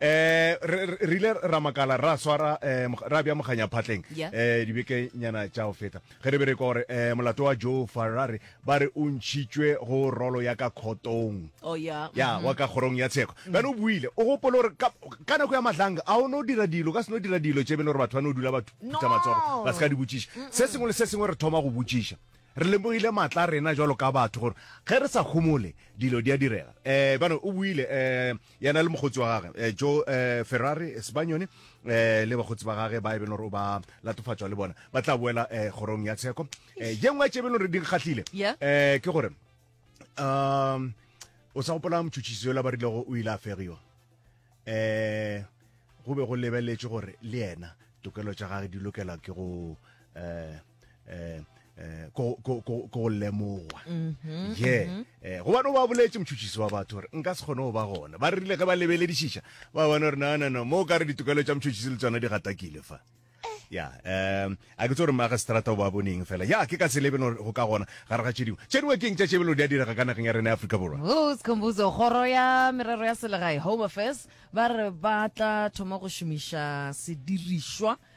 eh re re- re ile ra makala ra swara eh, mog- ra bja moganya phatleng Yeah. eh dibeke nyana tša go feta ge re be re kwa gore eh, molato wa joe farrari ba re o ntšhitšwe go rolo ya ka khotong oh ya ya wa ka kgorong ya tsheko bjale o buile o gopole gore ka ka nako ya matlanga a o no dira dilo o ka se no dira dilo tše bele gore batho ba no dula ba thu- No. phutha matsogo ba se ka di botšiša se sengwe le se sengwe re thoma go botšiša re lemogile maatla a rena jalo ka batho gore ge re sa humole dilo di a direga um bano o buile um yena le mokgotsi wa gage eh, joe eh, ferrari eh, sebanyone eh, le bakgotsi ba gage ba e beno gore o ba latofatšwa le bona ba tla boela eh, kgorong ya tsheko eh, ye nngwe tše beno gore di kgatlhile Yeah. eh, ke gore um o sa gopola motšhotšhisi yola ba rilego o ile a fegiwa eh go be go lebeletse gore le yena tokelo tša gage di lokelwa ke go eh eh eh ko ko ko ko lemoga mhm, ye mhm. eh go bana ba boletse motšhutšisi wa batho gore nka se kgone go ba gona ba rile ge ba lebeledišiša ba bona gore na na na mo ka re ditokelo tša motšhutšisi le tsona di gatakile fa ya um a ke tse gore maagistrata o ba boneng fela ya ke ka se lebe go ka gona gare ga tše dingwe tše dingwe ke eng tša tšebelo di a direga ka nageng ya rena ya aforika borwa skhombuzo kgoro ya merero ya selegae home affairs ba re ba tla thoma go šomiša sedirišwa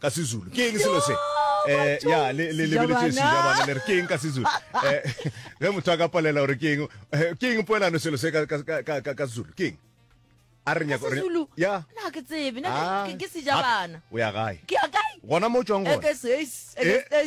Ka Sezulu. Ke eng selo se? Eh, ya, le, le, le beletse sejabana, le re ke eng ka Sezulu? Eh, ge motho a ka palela gore ke eng, eh, ke eng poelano selo se ka, ka, ka, ka, ka Sezulu? Ke eng? a re nyaka Sezulu ya na ke tsebe na ke ah. sejabana o ya gae ke ya kae gona mo tswang gona eh, eh.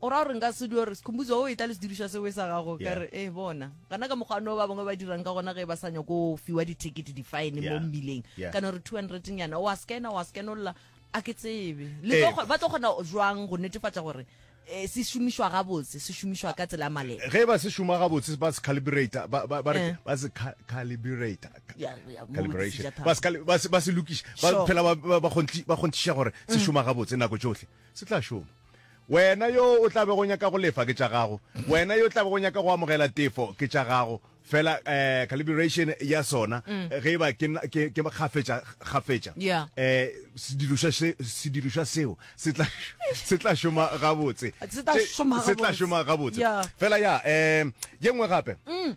O ra gore nka se dio re Sikhumbuzo o etla le sedirišwa se we sa gago ka re eh bona gana ka mokgwa no ba bangwe ba dirang ka gona ge ba sanya go fiwa di ticket di fine mo mmileng kana re 200 nyana wa scanner wa scanolla a ke tsebe le eh. ba tlo gona jwang go netefatsa gore eh, se šomišwa gabotse se šomišwa ka tsela male ge ba se šoma gabotse ba se calibrate ba ba ba eh. ba se calibrate calibration ba se ba se ba se lokiša ba phela ba ba gontši ba gontšiša gore se mm. šoma gabotse nako tšohle se tla šoma Wena yo o tla bego o nyaka go lefa, ke tša gago. Wena yo o tla bego o nyaka go amogela tefo, ke tša gago. Fela eh, calibration ya sona, mm. ge e ba ke, ke, ke kgafetša, kgafetša, yeah. eh, sedirišwa, se, sedirišwa seo se tla, se tla šoma gabotse. Se tla šoma gabotse. Se tla šoma gabotse. Yeah. Fela ya, eh, ye nngwe gape. Mm.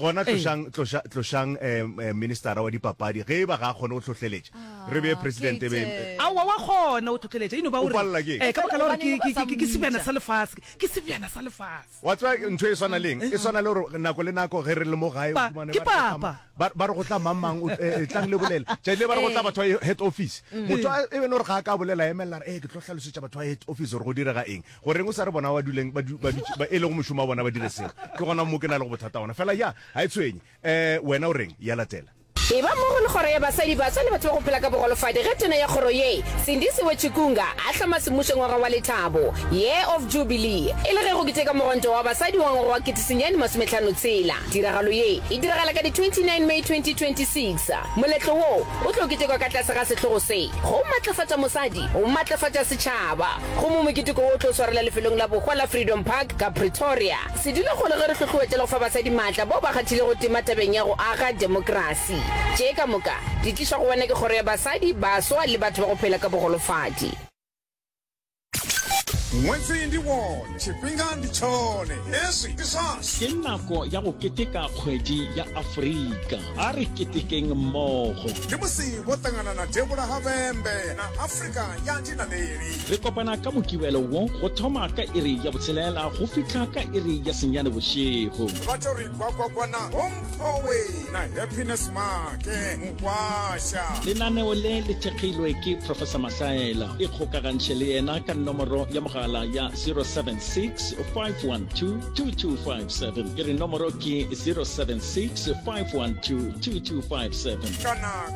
gona tlošang tloša tlošang eh, eh, ministera wa dipapadi ge e ba ga a kgone go tlhohleletša re bee president e be Kate. aowa wa kgona o tlhotlheletša ino ba O palela ke eng? Eh, ka baka la gore ke- ke- ke- ke sebjana sa lefase ke sebjana sa lefase wa tswa ntho e swana leng e swana le gore nako le nako ge re le mo gae o Pa- fumane ke ba re go tla- papa. ba- ba re go tla mangmang o- eh, eh, tlang le bolele tšatši le ba re go tla batho ba head office motho a- e bene gore ga a ka bolela emelela re e ke tlo hlalosetša batho ba head office gore go direga eng Go reng o sa re bona ba duleng ba du, ba du, ba e lego mošomo wa bona ba dire seo? Ke gona mo ke na lego bothata ona. Fela ya, ga e tshwenye. Eh, wena o reng? Ya latela. E ba mmogo le Kgoro ya Basadi, Baswa le Batho ba go Phela ka Bogolofadi ge Tona ya Kgoro ye, Sindisiwe Chikunga, a hloma semmušo ngwaga wa lethabo, Year of Jubilee, e le ge go keteka Mogonto wa Basadi wa ngwaga wa ketesenyane masometlhano tshela. Tiragalo ye e diragala ka di 29 May 2026. Moletlo wo o tlo ketekwa ka tlase ga sehlogo se, Go Matlafatša Mosadi, Go Matlafatša Setšhaba. Gomme moketeko wo o tlo swarela lefelong la bohwa la Freedom Park ka Pretoria. Se dule gona ge re hlohloetša le go fa basadi maatla bao ba kgathilego tema tabeng ya go aga demokrasi. Tše ka moka di tlišwa go wena ke Kgoro ya Basadi, Baswa le Batho ba go Phela ka Bogolofadi. Nwetsi ndi wone, tshifhinga ndi tshone, hezwi ndi zwashu. Ke nako ya go keteka Kgwedi ya Afrika. A re ketekeng mmogo! Ndi musi vho ṱangana na devhula ha vhembe na Afrika. Re kopana ka Mokibelo wo go thoma ka iri ya botshelela go fihla ka iri ya senyane bošego. Lenaneo le le thekgilwe ke Professor Mahlaela. Ikgokagantšhe le yena ka nomoro ya mogala ya 076 512 2257. Ke re nomoro ke 076 512 2257.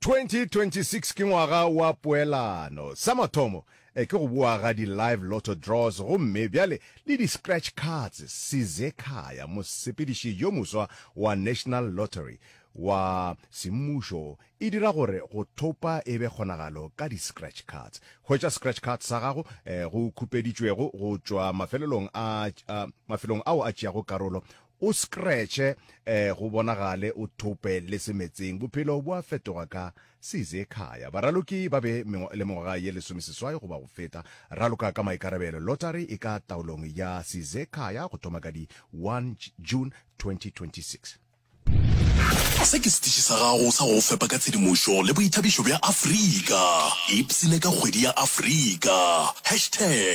2026 ke ngwaga wa poelano. Sa mathomo ke go boa ga di live lotto draws gomme bjale le di scratch cards. Size Khaya, mosepediši yo moswa wa National Lottery wa semmušo, e dira gore go thopa e be kgonagalo ka di scratch cards. Hwetša scratch card sa gago go khupeditšwego go tšwa mafelelong a mafelong ao a tšeago karolo O scratche eh, go bonagale o thope le semetseng, bophelo bo a fetoga ka se Zekhaya. Baraloki ba be mengwa, le mengwaga ye lesomeseswai goba go feta. Raloka ka maikarabelo. Lottery e ka taolong ya se Zekhaya go thoma ka di 1 June 2026. Se ke setiši sa gago sa go go fepa ka tshedimošo le boithabišo bja Afrika. Ipsine ka kgwedi ya Afrika. Hashtag.